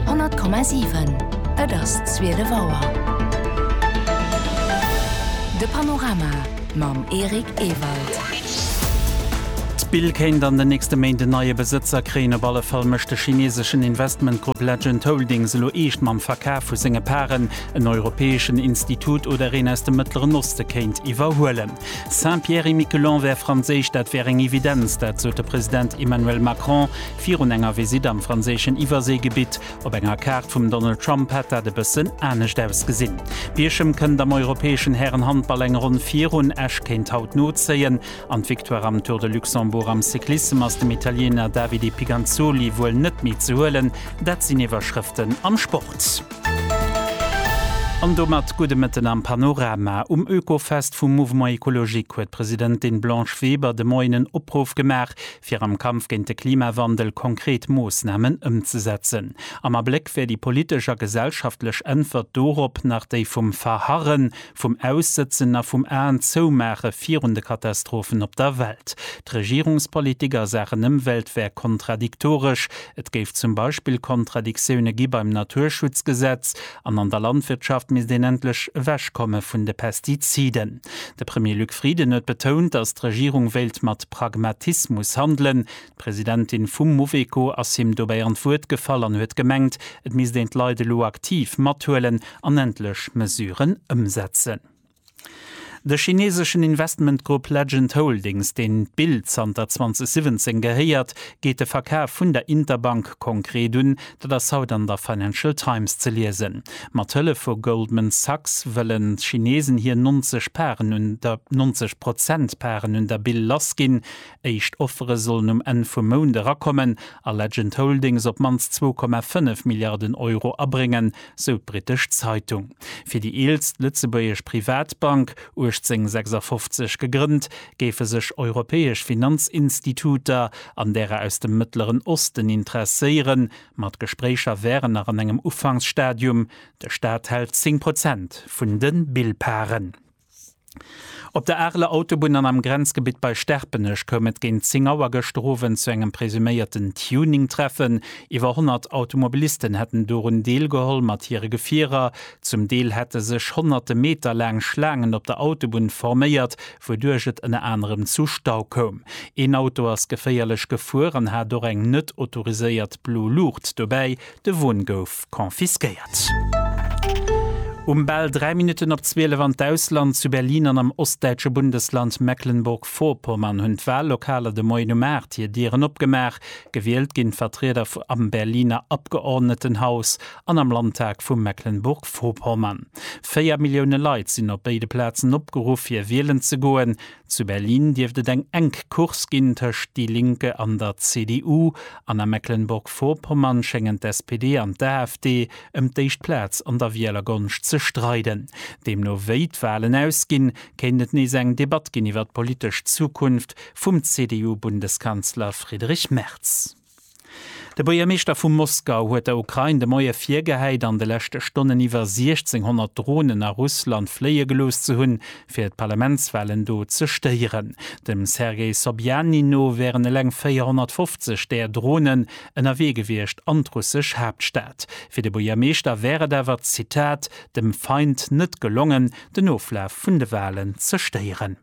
100,7. Et ass 12 Auer. De Panorama mam Eric Ewald. D'Spill kéint an den nächste Méint en neie Besëtzer kréien. Op alle Fall mécht de chineseschen Investmentgrupp Legend Holdings elo eescht mam Verkaf vu senge Paren. En europäeschen Institut oder een aus dem Mëttleren Oste kéint iwwerhuelen. Saint-Pierre-et-Miquelon wär franséisch, dat wär eng Evidenz. Dat sot de President Emmanuel Macron. Virun enger Visitt am franséischen Iwwerséigebitt. Op enger Kaart vum Donald Trump hätt dat e bëssen anescht ausgesinn. Bierchem kënnt am europäeschen Hären-Handball eng Ronn virun. Esch kéint haut nozéien an d'Victoire am Tour de Luxembourg am Cyclissem ass dem Italiener Davide Piganzoli wuel net méi ze huelen. Dat sinn Iwwerschrëften am Sport. An domat gudde Mëtten am Panorama. Um Oekofest vum Mouvement Ecologique huet d'Presidentin Blanche Weber de Moien en Opruff gemaach, fir am Kampf géint de Klimawandel konkret Moossnamen ëmzesetzen. Am Abléck wär déi politesch a gesellschaftlech Äntwert dorop nach déi vum Verharren, vum Aussëtzen a vum Aenzoumaache virun de Katastrophen op der Welt. D'Regierungspolitik a Saachen Ëmwelt wär kontradiktoresch. Et géif zum Beispill Kontradiktioune gi beim Naturschutzgesetz, an an der Landwirtschaft misst een endlech ewechkomme vun de Pestiziden. De Premier Luc Frieden huet betount, datt d'Regierung wéilt mat Pragmatismus handelen. D'Presidentin vum Mouveco ass him dobäi an d'Wuert gefall an huet gemengt, et misst een d'Leit elo aktiv mathuelen an endlech Mesuren ëmsetzen. De chineseschen Investmentgrupp Legend Holdings, deen d'Bild zanter 2017 gehéiert, geet de Verkaf vun der Interbank konkret un, Dat ass haut an der Financial Times ze liesen. Mat Hëllef vu Goldman Sachs wëllen d'Chinesen hir 90 Paren un der, 90 Prozent Paren un der Bill lassginn. Éischt Offere sollen um Enn vum Mount erakommen a Legend Holdings op d'mannst 2,5 Milliarden Euro abréngen, sou d'britesch Zeitung. Fir déi eelst lëtzebuergesch Privatbank, 1856 gegrënnt, géife sech europäesch Finanzinstituter an därer aus dem Mëttleren Osten interesséieren, ma d'Gespréicher wären nach an engem Ufanksstadium. De Staat hält 10 Prozent vun de Billparen. Op der Areler Autobunn an am Grenzgebitt bei Sterpenech koum et géint 10 Auer gëschter Owend zu engem presuméierten Tuning-Treffen. Iwwer 100 Automobilisten hätten dorun deelgeholl mat hire Gefierer. Zum Deel hätte sech honnerte Meter laang Schlaangen op der Autobunn forméiert, wouduerch et ënner anerem zu Stau koum. Een Auto ass geféierlech gefuer an hat och eng net autoriséiert blo Luucht dobäi. De Won gouf confisquéiert. Um bal 3 Minutten op 12 an d'Ausland, Zu Berlin an am ostdäitsche Bundesland Mecklenburg-Vorpommern hunn d'Wallokaler de Moien um 8 hir Dieren opgemaach. Gewielt ginn d'Vertrieder am Berliner Abgeordnetenhaus. an am Landtag vu Mecklenburg-Vorpommern. Véier Millioune Leit sinn op béide Plazen opgeruff fir wielen ze goen. Zu Berlin dierft et eng enk Course ginn tëscht Die Linke an der CDU an a Mecklenburg-Vorpommern schéngen d'SPD an d'AfD ëm d'éischt Plaz an der Wielergonscht ze streiden. Deemno wéi d'Walen ausginn, kéint et nees eng Debatt ginn iwwer d'politesch Zukunft vum CDU-Bundeskanzler Friedrich Merz. De Buergermeeschter vu Moskau huet der Ukrain de Moie virgehäit, an de leschte Stonnen iwwer 1.600 Dronen a Russland fléie gelooss ze hunn, fir d'Parlamentswalen do ze stéieren. Dem Sergei Sobjanin no wären eleng 450 där Dronen ënnerwee gewiescht an d'russesch Haaptstad. Fir de Buergermeeschter wär et awer, Zitat, dem Feind net gelongen, den Oflaf vun de Walen ze stéieren.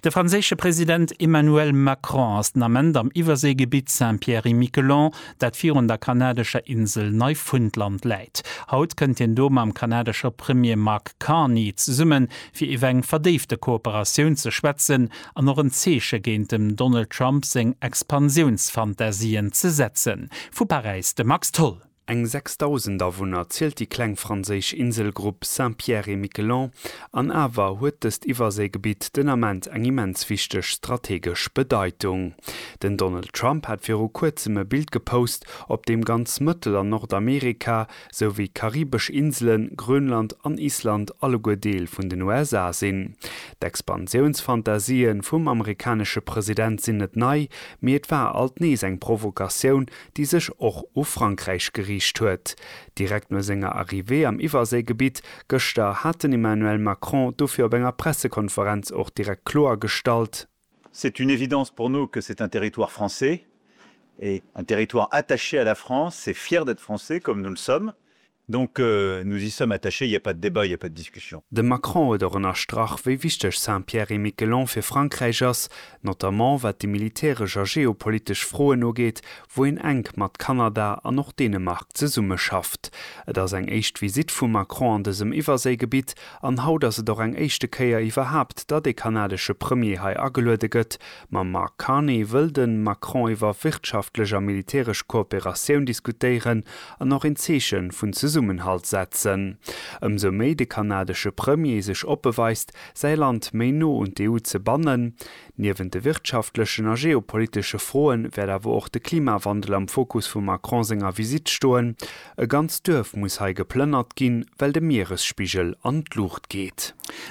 De franséische President Emmanuel Macron ass den Ament am Iwwerséigebitt Saint-Pierre-et-Miquelon, dat virun der kanadescher Insel Neifundland läit. Haut kënnt hien do mam kanadesche Premier Mark Carney zesumme fir iwwer eng verdéifte Kooperatioun ze schwätzen an och en Zeeche géint dem Donald Trump seng Expansiounsfantasien ze setzen. Vu Paräis de Max Tholl. Eng 6.000 Awunner zielt déi kleng franséisch Inselgrupp Saint-Pierre-et-Miquelon an awer huet dëst Iwwerséigebitt den Ament eng immens wichteg strategesch Bedeitung. Den Donald Trump hat viru kuerzem e Bild gepost, op deem ganz Mëttel an Nordamerika, sou wéi d'karibesch Inselen, Grönland an Island alleguer Deel vun den USA sinn. D'Expansiounsfantasien vum amerikanesche President sinn net nei, mee et war alt nees eng Provokatioun, déi sech och u Frankräich geriicht huet. Direkt no senger Arrivée am Iwwerséigebitt gëschter hat den Emmanuel Macron dofir op enger Pressekonferenz och direkt kloer gestallt, C'est une évidence pour nous que c'est un territoire français et un territoire attaché à la France et fier d'être français comme nous le sommes Donc, nous y sommes attachés, il n'y a pas de débat, il n'y a pas de discussion. De Macron huet och ënnerstrach, wéi wichteg Saint-Pierre-et-Miquelon fir Frankräich ass, notamment wat déi militäresch a geopolitesch Froen ugeet, wou een enk mat Kanada an och Dänemark zesummeschafft. Et ass eng éischt Visitt vum Macron an dësem Iwwerséigebitt an haut ass et och eng éischte Kéier iwwerhaapt, datt ee kanadesche Premier hei ageluede gëtt. Mam Mark Carney wëll de Macron iwwer wirtschaftlech a militäresch Kooperatioun diskutéieren an och een Zeeche vun Zesummenhalt setzen. Ëmsou méi de kanadesche Premier sech oppe weist, säi Land méi no un d'EU ze bannen. Niewent de wirtschaftlechen a geopolitesche Froe wäert awer och de Klimawandel am Fokus vum Macron senger Visitt stoen. E ganzt Duerf muss hei geplënnert ginn, well de Mieresspigel an d'Luucht geet.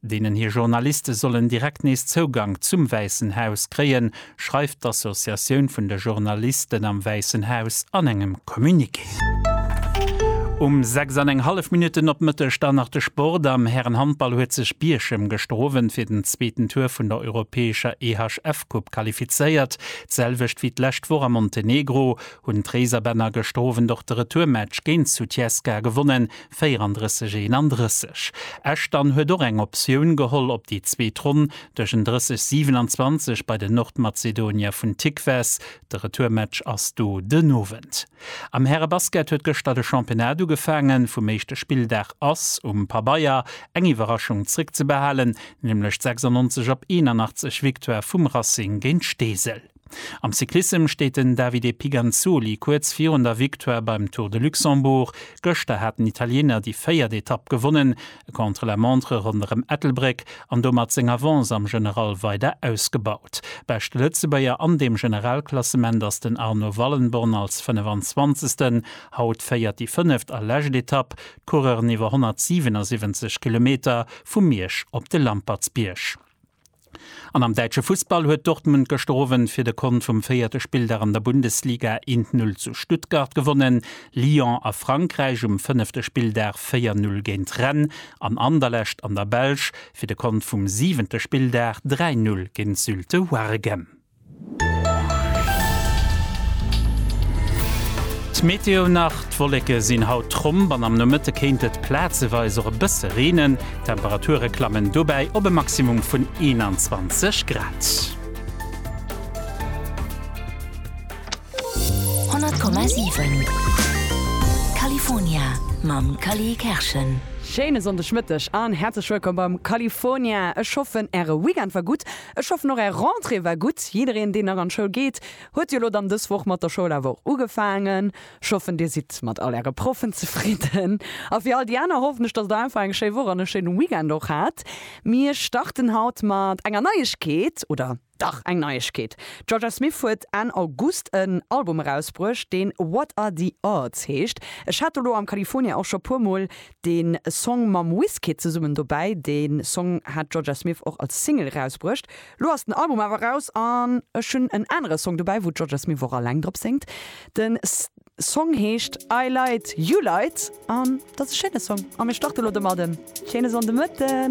deenen hir Journaliste sollen direkt nees Zougank zum Wäissen Haus kréien, schreift d'Associatioun vun de Journalisten am Wäissen Haus an engem Communiqué. Um 6 an eng hallef Minutten op Mëtteg dann nach de Sport, Am Härenhandball huet sech Bierchem gëschter Owend fir den zweeten Tour vun der europäescher EHF-Coupe qualifizéiert. D'selwecht wéi d'lescht Woch a Montenegro hunn d'Réiserbänner gëschter Owend och de Retourmatch géint Sutjeska gewonnen, 34 31. Esch dann huet och eng Optioun geholl op déi zweet Ronn duerch en 30 27 bei den Nordmazedonier vun Tikves. De Retourmatch ass do den Owend. Am Härebasket huet gëschter de Championnat ugefaangen. Vum éischte Spilldag ass um Pabeier eng Iwwerraschung zréckzebehalen, nämlech d'96 op 81 Victoire vum Racing géint Steesel. Am Cyclissem steet den Davide Piganzoli kuerz virun der Victoire beim Tour de Luxembourg. Gëschter hat den Italiener déi véiert Etapp gewonnen, e Contre-la-montre ronderëm Ettelbréck an domat seng Avance am General weider ausgebaut. Beschte Lëtzebuerger an deem Generalklassement ass den Arno Wallenborn als 25. Haut féiert déi fënneft a lescht Etapp d'Coureuren iwwer 177 Kilometer vu Miersch op de Lampertsbierg. An am däitsche Fussball huet Dortmund gëschter Owend fir de Kont vum véierte Spilldag an der Bundesliga 1, 0 zu Stuttgart gewonnen. Lyon a Frankräich um fënnefte Spilldag 4, 0 géint Rennes an Anderlecht an der Belsch fir de Kont vum siwente Spilldag 3, 0 géint Zulte Waregem. D'Meteo nach, D'Wolleke sinn haut tromp an am Nomëtte kéint et plazeweis och e bësse reenen. D'Temperature klammen dobäi op e Maximum vun 21 Grad. Schéine Sonndegmëtteg an häerzlech wëllkomm beim California. Ech hoffen, Äre Weekend war gutt. Ech hoffen och är Rentrée war gutt. Jiddereen deen nach an d'Schoul geet, huet jo elo dann dës Woch mat der Schoul awer och ugefaangen. Ech hoffen dir sidd mat all äre Proffen zefridden. A fir all déi aner hoffen ech, datt der einfach eng schéi Woch an e schéine Weekend och hat. Mir starten haut mat enger Neiegkeet, oder dach eng Neiegkeet. D'Jorja Smith huet Enn August en Album erausbruecht deen What Are The Odds heescht. Ech hat do elo am California och scho puer mol deen Song mam Wizkid zesummen dobäi. Deen Song hat d'Jorja Smith och als Single erausbruecht. Lo ass den Album awer eraus an ech hunn en anere Song dobäi wou d'Jorja Smith och alleng drop séngt. Den Song heescht I Lied, You Lied an dat ass e schéine Song a mir starte lo domadden. Schéine Sonndemëtten.